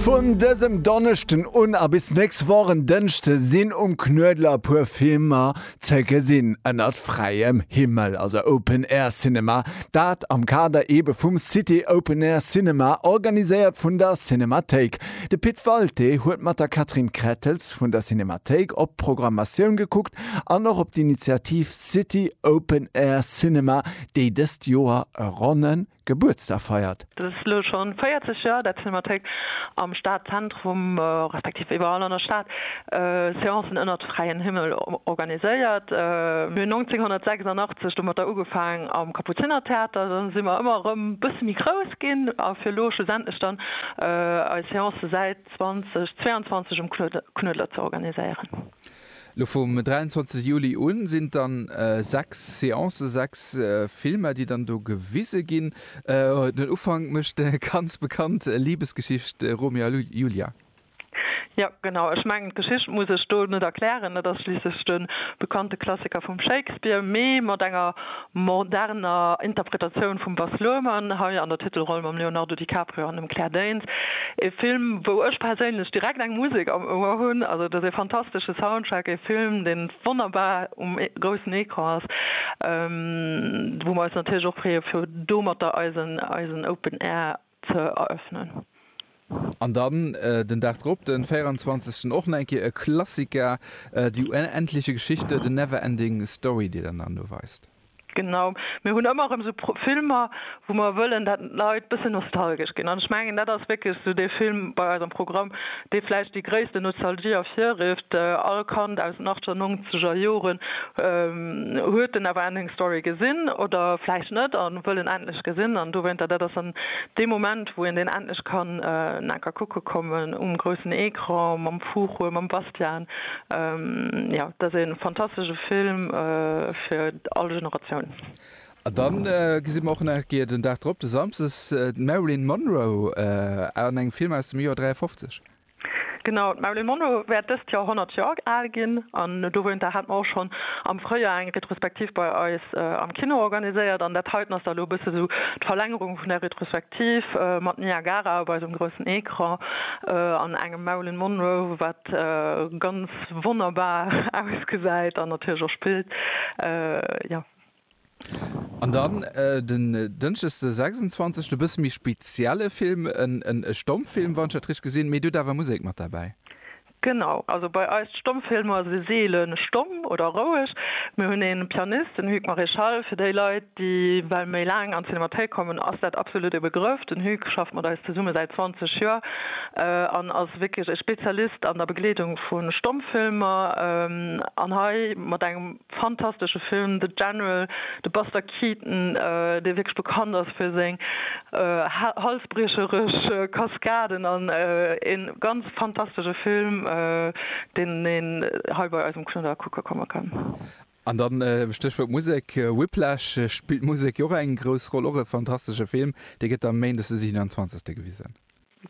Vun dësem Donneschden un a bis nächst Woch en Dënschde sinn um Knuedler e puer Filmer ze gesinn ënnert fräiem Himmel, also Open Air Cinema. Dat am Kader ebe vum City Open Air Cinema, organiséiert vun der Cinemathéik. De Pit Walté huet mat der Catherine Krettels vun der Cinemathéik op d'Programmatioun gekuckt an och op d'Initiativ City Open Air Cinema, déi dëst Joer e ronne Gebuertsdag feiert. Dat ass elo scho 40 Joer, dat d'Cinémathéik am Stadzentrum, respektiv iwwerall an der Stad, Seancen ënnert fräiem Himmel organiséiert. Mir hunn 1986 domatter ugefaangen am Kapuzinertheater, dann si mer ëmmer erëm e bësse méi grouss ginn a fir elo schlussendlech dann eis Seancë säit 2022 um Knuedler ze organiséieren. Lo vum 23 Juli un sinn et dann 6 Seancen, 6 Filmer déi dann do gewise ginn. Den Ufank mécht de ganz bekannt Liebesgeschicht Romeo a Julia. Jo genau, ech mengen d'Geschicht muss ech do net erklären, et ass schliisslech de bekannte Klassiker vum Shakespeare, mee mat enger moderner Interpretatioun vum Baz Luhrmann, hei an der Titelroll mam Leonardo DiCaprio an dem Claire Danes. Ee Film, wou ech perséinlech direkt eng Musek am Ouer hunn. Also, et ass ee fantastesche Soundtrack, ee Film, dee wonnerbar um groussen Ecran ass, wou mer eis natierlech och freeë fir domatter eisen Open Air, ze eröffnen. An dann den Dag drop, den 24 och nach eng Kéier e Klassika, Die unendliche Geschichte, The Never Ending Story, déi der dann do weist. Genau, mir hunn ëmmer erëm esou Filmer, wou mer wëllen, dat d'Leit bëssen nostalgesch ginn. An ech mengen, dat ass wierklech esou dee Film bei eis am Programm, dee vläicht déi gréisste Nostalgie ervirrifft, all Kand aus den achter nongzeger Joren huet den Neverending Story gesinn oder vläicht net a wëll en endlech gesinn an dowéinter, dat ass dann dee Moment, wou een deen endlech kann en enker kucke kommen um groussen Ecran mam Fuchur, mam Bastian. Jo, dat ass ee fantastesche Film fir all Generatioun. An dann gesi mer och nach eng Kéier den Dag drop, de Samsdes, d'Marilyn Monroe an engem Film aus dem Joer 53. Genau, d'Marilyn Monroe wäert dëst Joer 100 Joer al ginn. An dowéinter hat mer och schonn am Fréijoer eng Retrospektiv bei eis am Kino organiséiert. An dat heiten ass da elo e bësse sou d'Verlängerung vun där Retrospektiv, mat Niagara op eisem groussen Ecran an engem Marilyn Monroe, wat ganz wonnerbar ausgesäit an natierlech och spillt. Jo. An dann den Dënschdeg de 26. E bësse méi spezielle Film, e Stommfilm, wann ech dat richteg gesinn. Mee dir hutt awer Musek mat derbäi. Genau, also bei eis d'Stommfilmer si seele stomm oder roueg. Mir hunn ee Pianist, den Hugues Maréchal. Fir déi Leit, déi well méi laang an d'Cinémathéik kommen, ass dat absolutt e Begrëff. Den Hugues schafft mat eis zesumme säit 20 Joer an ass wierklech e Spezialist an der Begleedung vu Stommfilmer. An hei mat engem Fantastesche Film, The General, de Buster Keaton, dee wierklech bekannt ass fir seng halsbriecherech Kaskaden, an e ganz fantastesche Film, deen een hei bei eis um Knudder kucke komme kann. An da Stéchwuert Musek, Whiplash, spillt d'Musek jo och eng grouss Roll, och e fantastesche Film, dee gëtt da méindes de 27. gewisen.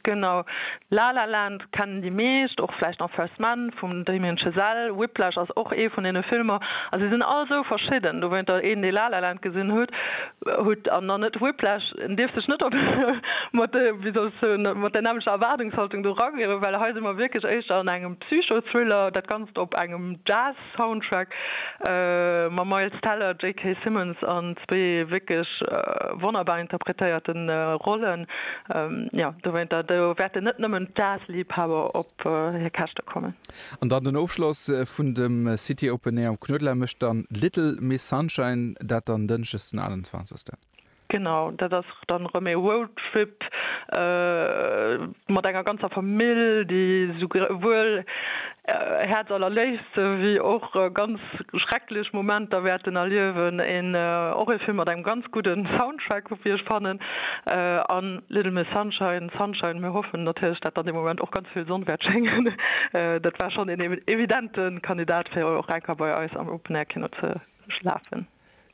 Genau. La La Land kennen déi meescht, och vläicht nach First Man vum Damien Chazelle. Whiplash ass och ee vun deene Filmer. A se sinn all esou verschidden. Dowéinter, een, dee La La Land gesinn hutt an dann net Whiplash, en dierf sech net op mat, wéi soll ech soen, mat där nämmlecher Erwaardungshaltung do rangéieren, well hei si mer wierklech éischter an engem Psycho-Thriller, dat Ganzt op engem Jazz. Soundtrack mam Miles Teller, JK. Simmons an zwee wierklech wonnerbar interpretéierte Rollen. Jo, dowéinter do wäerten net nëmmen d'Jazz-Liibhaber op hir Käschte kommen. An dann den Ofschloss vun dem City Open Air am Knuedler mécht dann Little Miss Sunshine, dat dann Dënschdes den 28. Genau, dat ass dann erëm ee Roadtrip mat enger ganzer Famill, déi souwuel häerzallerléifste wéi och ganz schrecklech Momenter wäerten erliewen. Een och ee Film mat engem ganz gudde Soundtrack, wéi ech fannen, a Little Miss Sunshine, Sunshine, mir hoffen natierlech, datt an deem Moment och ganz vill Sonn wäert schéngen. Dat war schonn een evidente Kandidat, fir och enker bei eis am Open-Air-Kino ze lafen.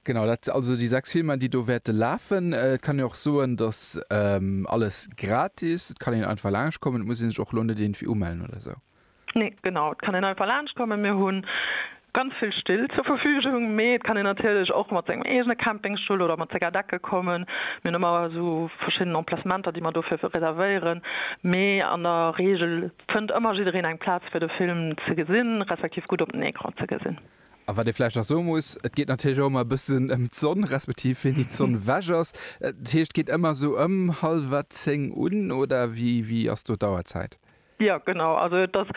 Genau, dat si also déi sechs Filmer, déi do wäerte lafen. Et kann een och soen, dass alles gratis, et kann een einfach laanscht kommen, et muss ee sech och elo net iergendwéi umellen oder esou. Nee, genau, et kann een einfach laanscht kommen. Mir hu ganz vill Still zur Verfügung, mee et kann een natierlech och mat sengem eegene Campingstull oder mat senger Decke kommen. Mir hunn ëmmer esou verschidden Emplacementer, déi mer dofir reservéieren, mee an der Reegel fënnt ëmmer jiddereen eng Plaz, fir de Film ze gesinn, respektiv gutt op den Ecran ze gesinn. A wat ee vläicht nach soe muss, et geet natierlech och ëmmer e bëssen ëm d'Sonn, respektiv wéini d'Sonn ewech ass. Dat heescht, geet ëmmer esou ëm hallwer zéng un, oder wéi wéi ass do d'Auerzäit? Jo, genau, also et ass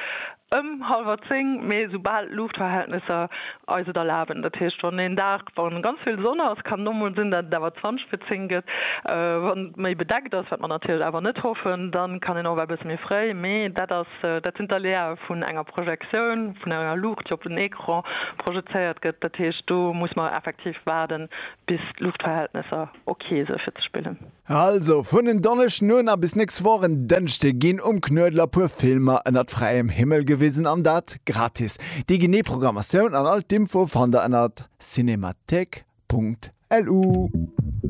ëm hallwer zéng, mee esou bal d'Luuchtverhältnesser eis et erlaben. Dat heescht, wann een Dag, wa ganz vill Sonn ass, kann et och mol sinn, datt et awer zwanzeg vir zéng gëtt. Wann et méi bedeckt ass, wat mer natierlech awer net hoffen, dann kann een och ewell e bësse méi fréi, mee dat ass Dat sinn d'Aléae vun enger Projektioun, vun enger Luucht, déi op den Ecran projezéiert gëtt. Dat heescht, do muss mer effektiv waarden, bis d'Luuchtverhältnesser ok sinn, fir ze spillen. Also, vun en Donneschden un a bis nächst Woch en Dënschde ginn um Knuedler puer Filmer ënnert fräiem Himmel gewisen, an dat gratis. Déi genee Programmatioun an all d'Infoe fannt der ënnert cinemathèque.lu.